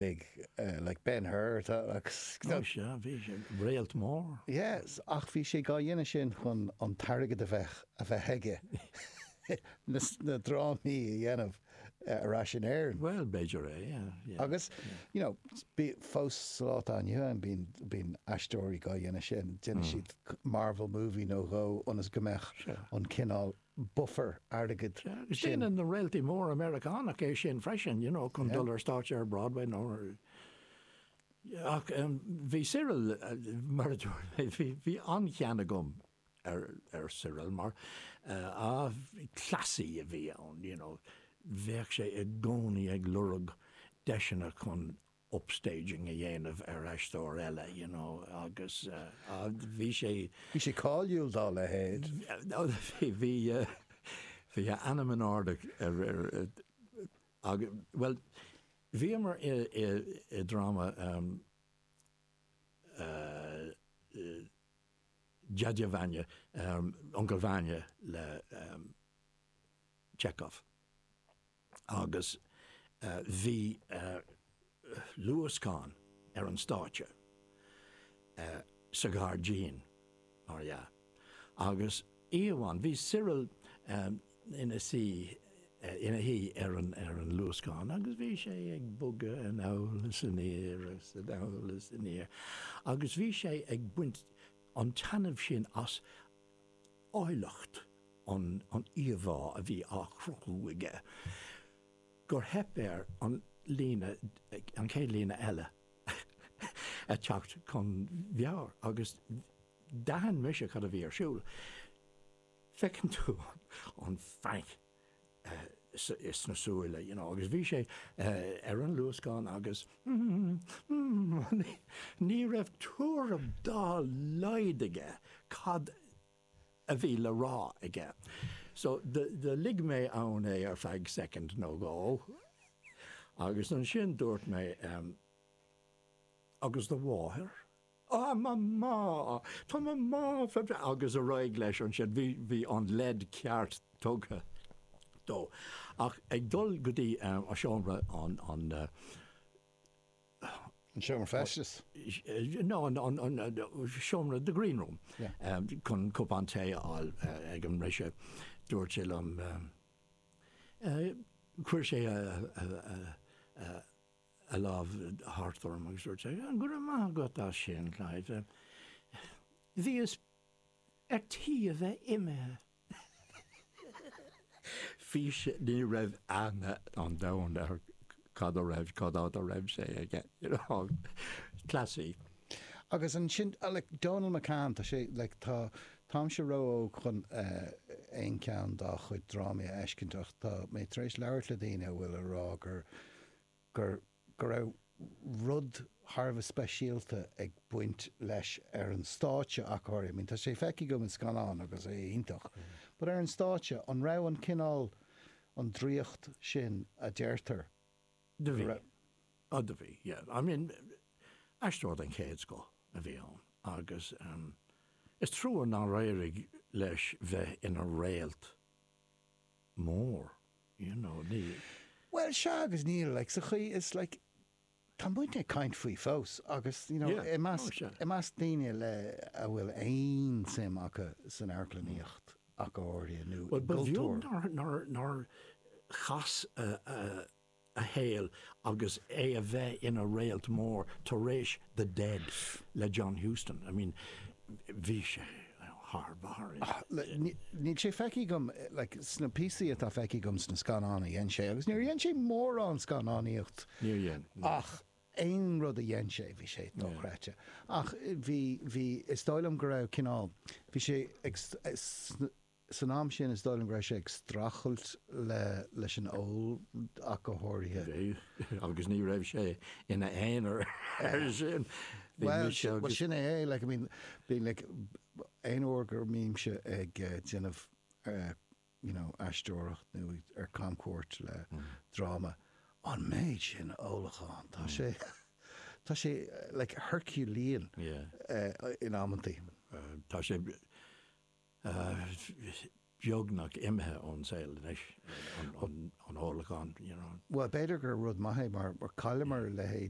Big, like Ben Hur, tá, agus. Ó sea, bhí sé, réalt mór. Yes, ach bhí sé dhá dhéanamh sin chun an t-airgead a bheith, a bheith aige, na, na drámaí a dhéanamh ar ais in Éirinn. Bhuel, b'fhéidir é, yeah. Agus, you know, bí, fós sa lá atá inniu ann, bíonn, bíonn aisteoirí dhá dhéanamh sin, déanann siad Marvel movie nó dhó ionas go mbeadh an cineál bufar airgid sin. Déanann na réaltaí móra Meiriceánach é sin freisin, you know, chun dul ar stáitse ar Broadway nó ar. Ach bhí Cyril, mar a dúirt mé, bhí, bhí an-chion agam ar, ar Cyril mar, ah, cleasaí a bhí ann, you know. Bheadh sé i gcónaí ag lorg deiseanna chun upstaging a dhéanamh ar aisteoir eile you know agus bhí sé. Bhí sé cáiliúil dá leithéid. Bhí bhí a ainm in airde ach bhuel bhíomar i dráma Dyadya Vanya Uncail Vanya le Chekhov. agus bhí luascán ar an stáitse sa ghairdín, mar dhea. Agus oíche amháin, bhí Cyril ina suí, ina shuí ar an luascán agus bhí sé ag bogadh anall is aniar is anall is aniar agus bhí sé ag baint an taitneamh sin as áilleacht an íomhá a bhí á chruthú aige gur theip air an líne, an chéad líne eile a theacht chun a mheabhair agus d'aithin mise cad a bhí ar siúl. Feiceann tú an panic sna súile you know agus bhí sé ar an luascán agus ní raibh tuairim dá laghad aige cad a bhí le rá aige. So do lig mé ann é ar feadh soicind nó dhó agus ansin dúirt mé, Agus do mháthair? Ah mamá! Tá mamá go breá agus ar aghaidh leis ansin. Bhí bhí an leid cheart tugtha dó. Ach ag dul go dtí an seomra an an An seomra feistis? No an an an seomra the green room chun cupán tae a fháil ag an mbriseadh dúirt sé liom chuir sé a a a a lámh thart orm agus dúirt sé, Go raibh maith agat as sin, Clive. Bhíos ar tí a bheith imithe. Fís, ní raibh aithne ar domhan air cad a raibh, cad a, do raibh sé aige. Cleasaí. Agus ansin, like, Dónall McCann, tá sé, like, tá, táimse ró-óg chun aon cheann dá chuid drámaí a fheiscint ach tá mé tar éis labhairt le daoine a bhfuil a rá gur gur go raibh rud thar a bheith speisialta ag baint leis ar an stáitse ach go háirithe. Tá sé feicthe agam in scannáin agus é iontach, but ar an stáitse, an raibh an cineál, an draíocht sin a deirtear go raibh? Do bhí. Oh, do bhí, yeah. I mean, aisteoir den chéad scoth a bhí ann agus is trua nár éirigh leis bheith ina réalt mór, you know, ní. Bhuel, sea agus níl, like, sa chaoi is, like, tá muidne ag caint faoi fós agus, you know, Yeah, i measc, oh, sea. i measc daoine like, a bhfuil aon tsuim acu san amharclannaíocht ach go háirithe nó i gcultúr. Bhuel, ba bheag nár, nár, nár chas a, a, a shaol agus é a bheith ina réalt mór tar éis The Dead le John Huston. I mean bhí sé thar barr. Níl sé feicthe agam like, sna píosaí atá feicthe agam sna scannáin a dhein sé agus níor dhein sé mórán scannánaíocht ach aon rud a dhein sé bhí sé dochreidte ach bhí, bhí, is dóigh liom go raibh cineál, bhí sé ag San am sin is dóigh liom go raibh sé ag strachailt leis an ól ach go háirithe. Bhí, agus ní raibh sé ina aonar ar sin. Bhuel sin é é, like, I mean, bíonn, like, aon uair go mbímse ag déanamh you know, aisteoireacht nó ar camchuairt le dráma, an méid sin ólacháin, tá sé, tá sé, like, herculean in amantaí. Tá sé. Tá sé beagnach imithe ón saol anois an ólachán, you know. Bhuel, b'fhéidir gur rud maith é mar chailleamar a leithéid.